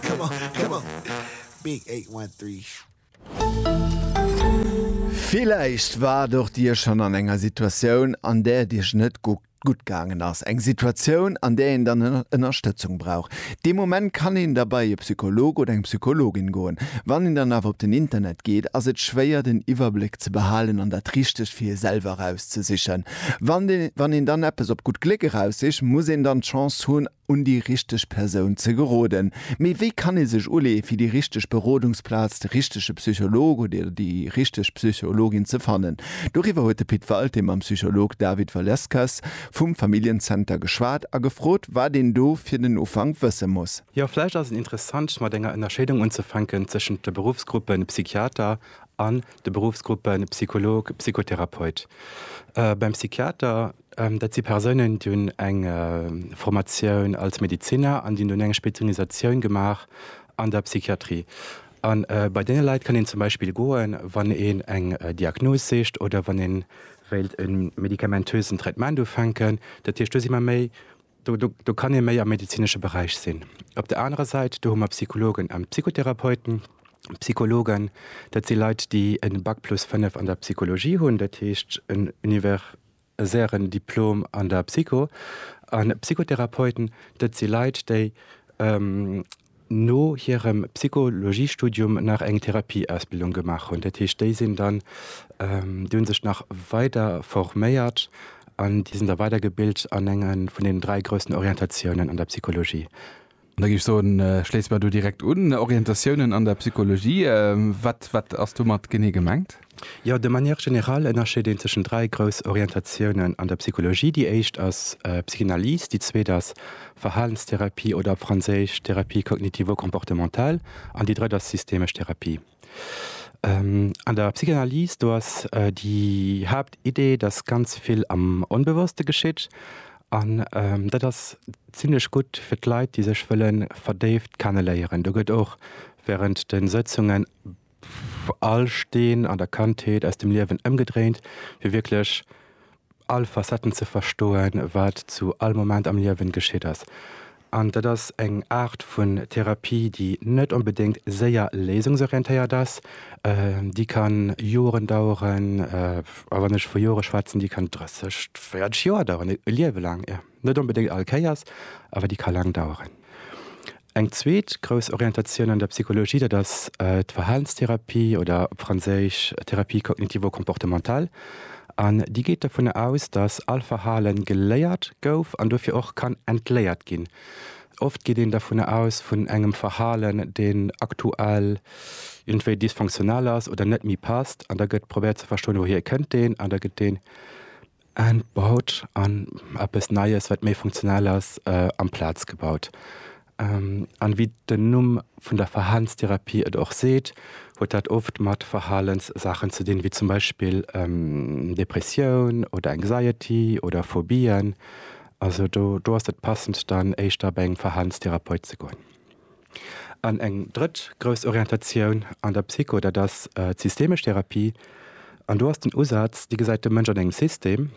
Come on, come on. Big eight, one, three. Villäicht waart och Dir schonn an enger Situatioun, an där et Iech net gutt gaangen ass. Eng Situatioun, an där een dann Ënnerstëtzung brauch. Dee Moment kann een da bei e Psycholog oder eng Psychologin goen. Wann een dann awer op den Internet geet, ass et schwéier, den Iwwerbléck ze behalen an dat Richtegt fir ee selwer erauszesichen. Wann een dann eppes op gutt Gléck eraussicht, muss een dann d'Chance hunn, un déi richteg Persoun ze geroden. Mee wéi kann ee sech uleeë fir déi richteg Berodungsplaz, de richtege Psycholog oder déi richteg Psychologin ze fannen? Doriwwer huet de Pit Walté mam Psycholog David Valeskas vum Familljen-Zenter geschwat a gefrot, wat een do fir den Ufank wësse muss. Jo, vläicht ass et interessant mat enger Ënnerscheedung unzefänken tëschent de Beruffsgruppe Psychiater an de Beruffsgruppe Psycholog, Psychotherapeut. Beim Psychiater Dat si Persounen, déi hunn eng Formatioun als Medeziner an déi hunn dunn eng Spezialisatioun gemaach an der Psychiatrie. A bei deene Leit kann een zum Beispill goen, wann een eng Diagnos sicht oder wann ee wéilt e medikamentösen Traitement ufänken. Dat heescht, do si mer méi, do do kann ee méi am medezinesche Beräich sinn. Op der anerer Säit, do hu mer Psychologen an Psychotherapeuten. Psychologen, dat si Leit, déi e Bac plus fënnef an der Psychologie hunn, dat heescht en Univers sären Diplom an der Psycho. A Psychotherapeuten, dat si Leit, déi no hirem Psychologiestudium nach eng Therapieausbildung gemaach hunn. Dat heescht, déi sinn dann, déi hu sech nach weider forméiert an déi sinn da weidergebilt an enge vun deenen dräi groussen Orientatiounen an der Psychologie. Da géif ech soen, schléisse mer do direkt un. Orientatiounen an der Psychologie, wat, wat ass domat genee gemengt? Jo, de manière générale ënnerscheet een tëschent dräi grouss Orientatiounen an der Psychologie. Déi éischt ass Psychanalyse, déi zweet ass Verhalenstherapie oder op Franséisch Thérapie cognitivo-comportementale an déi drëtt ass systemesch Therapie. An der Psychanalyse, do ass déi Haaptidee, datt ganz vill am Onbewosste geschitt. An dat ass zimmlech gutt fir d'Leit, déi sech wëlle verdéift kenne léieren. Do gëtt och während de Sëtzungen all Steen an der Kandheet aus dem Liewen ëmgedréint, fir wierklech all Facetten ze verstoen, wat zu all Moment am Liewen geschitt ass. An dat ass eng Aart vun Therapie, déi net onbedéngt séier léisungsorientéiert ass, déi kann Joren daueren, a wann ech vu Jore schwätzen, déi kann 30, 40 Joer daueren, e Liewe laang. Net onbedéngt all Kéiers, awer déi ka laang daueren. Eng zweet grouss Orientatioun an der Psychologie, dat ass d'Verhalenstherapie oder op Franséisch Thérapie cognitivo-comportementale. An déi geet dovunner aus, datt all Verhale geléiert gouf an dofir och kann entléiert ginn. Oft geet een dovunner aus vun engem Verhalen, deen aktuell iergendwéi dysfonctionnel ass oder net méi passt. An da gëtt probéiert ze verstoen, wouhier kënnt deen, an da gëtt dee. En baut an eppes Neies, wat méi funktionell ass, amplaz gebaut. An wéi den Numm vun der Verhalenstherapie et och seet, huet dat oft mat Verhalenssaachen ze dinn, wéi zum Beispill Depressioun oder Anxiety oder Phobien. Also do ass et passend dann éischter bei engem Verhalenstherapeut ze goen. An eng drëtt grouss Orientatioun an der Psycho, dat ass d'systemesch Therapie. An do ass den Usaz, déi gesäit de Mënsch an engem System,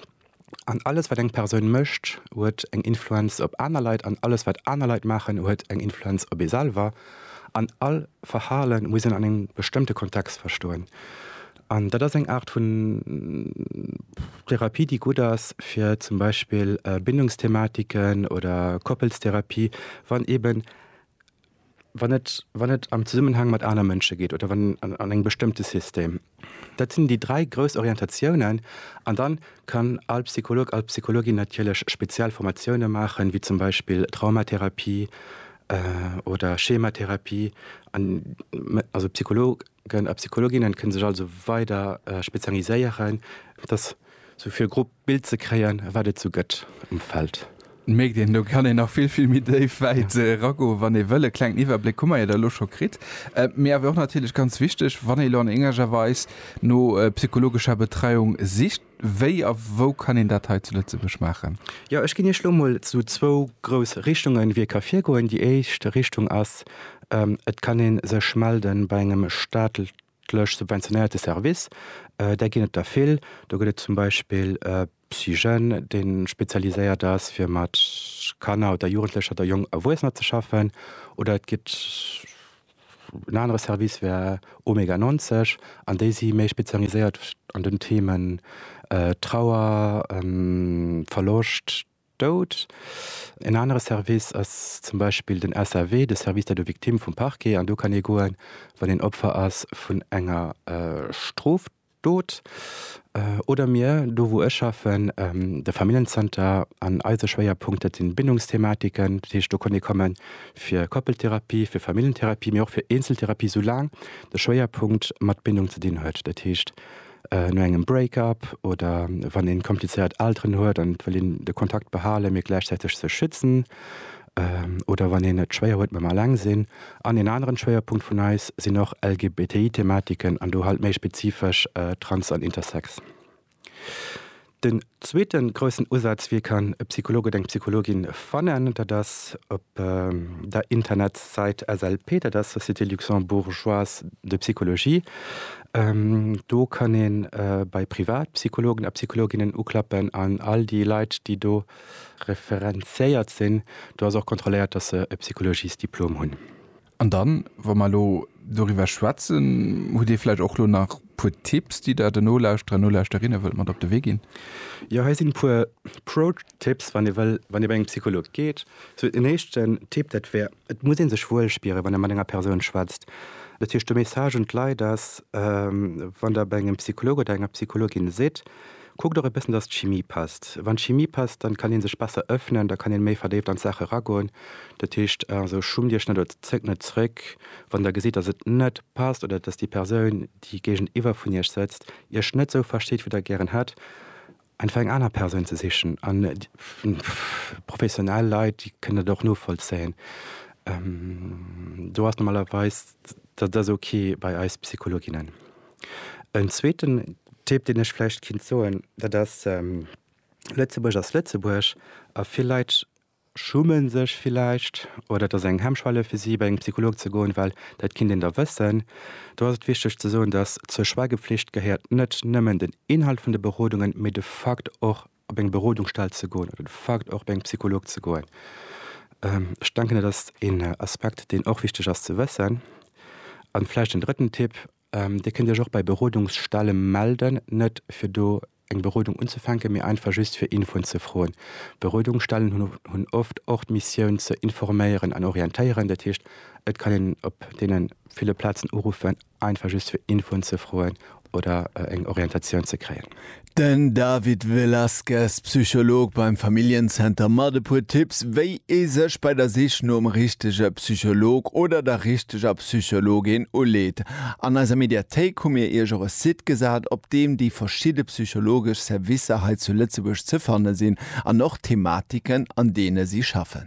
an alles wat eng Persoun mécht, huet eng Influenz op aner Leit, an alles wat aner Leit maachen, huet eng Influenz op ee selwer, an all Verhale muss een an engem bestëmmte Kontext verstoen. An dat ass eng Aart vun Therapie, déi gutt ass fir zum Beispill Bindungsthematiken oder Koppelstherapie, wann eben, wann et, wann et am Zesummenhang mat aner Mënsche geet oder wann an engem bestëmmte System. Dat sinn déi dräi grouss Orientatiounen. An da kann all Psycholog, all Psychologin natierlech speziell Formatioune maachen, wéi zum Beispill Traumatherapie oder Schematherapie. Also Psycholog. Psychologen a Psychologinnen kënne sech also weider spezialiséieren, fir dass esou vill grob Bild ze kréien, wat et esou gëtt um Feld. Mierkt een, do kann een nach vill, vill méi déif, wäit eragoen, wann ee wëll. E klengen Iwwerbléck hu mer jo da elo scho kritt. Mee awer och natierlech ganz wichteg, wann ee elo an eengeger Weis no psychologescher Betreiung sicht, Wéi a wou kann een dat hei zu Lëtzebuerg maachen? Jo, ech ginn Iech elo mol esou zwou grouss Richtungen, wéi ee ka virgoen. Déi éischt Richtung ass, Et kann ee sech melde bei engem staatlech subventionéierte Service. Där ginn et der vill. Do gëtt et zum Beispill Psyjeunes, dee spezialiséiert ass, fir mat Kanner oder Jugendlecher oder jonk Erwuessener ze schaffen. Oder et gëtt En anere Service wär Omega 90 an déi si méi spezialiséiert an den Themen Trauer, Verloscht, Doud. En anere Service ass zum Beispill den SAV, de Service d'aide aux victimes vum Parquet, an do kann ee goen, wann een Opfer ass vun enger Stroftat. Dot, oder mir, do wou ech schaffen, de Familljenzenter, an eise Schwéierpunkt, dat sinn Bindungsthematiken, dat heescht do konnt ee komme fir Koppeltherapie, fir Familljentherapie, mee och fir Eenzeltherapie, soulaang de Schwéierpunkt mat Bindung ze dinn huet, dat heescht no engem Break-up oder wann ee komplizéiert Elteren huet an et wëll een de Kontakt behalen, mee gläichzäiteg sech schützen, oder wann een et schwéier huet mam Alleng sinn. An een aneren Schwéierpunkt vun eis sinn och LGBTI-Thematiken an do halt méi spezifesch Trans an Intersex. Den zweeten groussen Usaz, wéi kann e Psycholog oder eng Psychologin fannen, dat ass op der Internetsait SLP, dat ass Société Luxembourgeoise de Psychologie. Do kann ee bei Privatpsychologen a Psychologinnen uklappen an all déi Leit, déi do referenziéiert sinn, do ass och kontrolléiert, dass se e Psychologiesdiplom hunn. An dann, wa mer elo doriwwer schwätzen, hutt Dir vläicht och elo nach e puer Tipps, déi Der den Nolauschterer, Nolauschterinnen wëllt mat op de Wee ginn? Jo, hei sinn e puer Pro-Tipps, wann ee wëll, wann ee bei engem Psycholog geet. Sou en éischten Tipp, dat wär, Et muss ee sech wuel spieren, wann ee mat enger Persoun schwätzt. Dat heescht, de Message un d'Leit ass, wann der bei engem Psycholog oder enger Psychologin sidd, kuckt och e bëssen, datt d'Chimie passt. Wann d'Chimie passt, dann kann ee sech besser ëffnen, da kann ee méi verdéift an d'Saache eragoen. Dat heescht also, schummt Iech net oder zéckt net zréck, wann der gesitt, datt et net passt oder datt déi Persoun, déi géigeniwwer vun Iech sëtzt, Iech net esou versteet, wéi der gären hätt. Einfach eng aner Persoun ze sichen. An professionell Leit, déi kënnen dat och novollzéien. Do ass normalerweis, dat ass ok bei eis Psychologinnen. En zweeten Tipp, deen ech vläicht kéint soen, dat ass, Lëtzebuerg ass Lëtzebuerg a vill Leit schummen sech villäicht oder et ass eng Hemmschwelle fir si bei engem Psycholog ze goen, well dat kinnt een da wëssen. Do ass et wichteg ze soen, datt zur Schweigepflicht gehéiert net nëmmen den Inhalt vun de Berodungen, mee de Fakt och op eng Berodungsstell ze goen oder de Fakt och bei engem Psycholog ze goen. Ech denken dat ass een Aspekt deen och wichteg ass ze wëssen. An vläicht en drëtten Tipp, Dir kënnt Iech och bei Berodungsstelle melden, net fir do eng Berodung unzefänken, mee einfach just fir Infoen ze froen. Berodungsstellen hunn oft och d'Missioun ze informéieren an orientéieren. Dat heescht, et kann een op deene ville Plazen uruffen, einfach just fir Infoen ze froen oder eng Orientatioun ze kréien. Den David Velazquez, Psycholog beim Familljen-Center mat e puer Tipps, wéi ee sech bei der Sich nom richtege Psycholog oder der richteger Psychologin uleet. An eiser Mediathéik hu mir iech och e Site gesat, op deem déi verschidde psychologesch Servicer hei zu Lëtzebuerg ze fanne sinn an och d'Thematiken, an deene si schaffen.